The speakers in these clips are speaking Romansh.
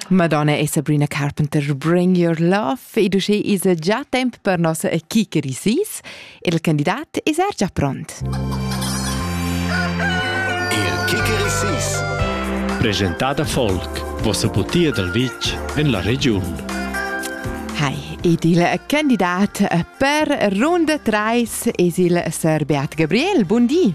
Madonna è Sabrina Carpenter Bring Your Love ed uschè es già temp per nossa equipa Risis il candidat es er già pront. Il Kicker Risis Presentada Folk, vossa putia dal vitg en la regiun. Hi, ed il candidat per runda 3 es il Sir Beat Gabriel. Buondì!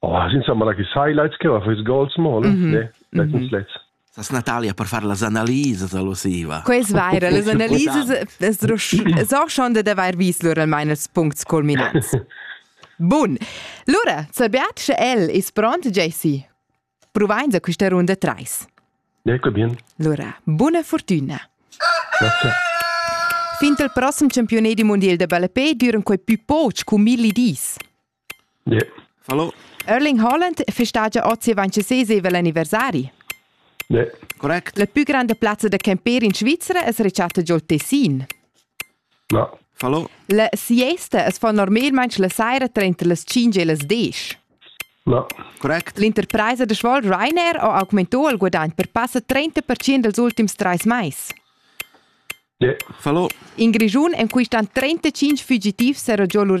Oh, insomma, la highlights che va fes goals mo, mm -hmm. ne? Let's, mm -hmm. let's. Sas Natalia per far las analises allosiva. Quels vaira, las analises so schon de d'avair vis lur almain els puncts culminants. Bun. Lura, sabiat sche el is pront, JC. Provains a quista runda 3. Ecco bien. Lura, buona fortuna. Grazie. Fin al prossimo campionato mondial de balapé duran quei più poch cu milli dis. Hallo. Erling Haaland festagia oz avanti sesevel anniversari. Correct. La più grande piazza da camper in Svizzera es rechatta giò Tessin. No. Hallo. La siesta es fa normalmaing la saira tranter las 5 e las 10. No. Correct. L'interpresa da Schwal Ryanair ha augmentò il guadagn per passa 30% dels ultims tres mais. Yeah. Hallo. In Grischun en quistan 35 fugitivs era giò lur